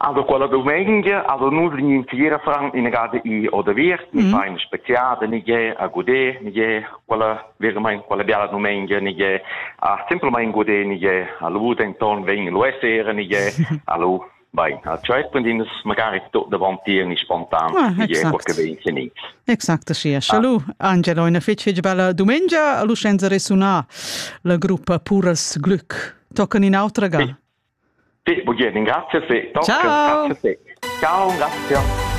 Also quella dumengia also nus in intira fran inagada i odaviert, ni fa in speziada, ni ge a gudé, ni ge quella veramain quella biala dumengia, ni ge a semplamain gudé, ni ge a lu denton vegn lu e sera, ni ge a lu Bein, a tscheit prendin magari tot davant tier ni spontan, Ah, ni ge exact. qualche vegn ni. Exact sia. Scha lu, Angelo, ina fitg fitg bella dumengia, a lu senza resunar la gruppa Puras Glück. Toccan in autra ga. Sì, bugen, grazias e tocca, grazias e. Ciao, grazie.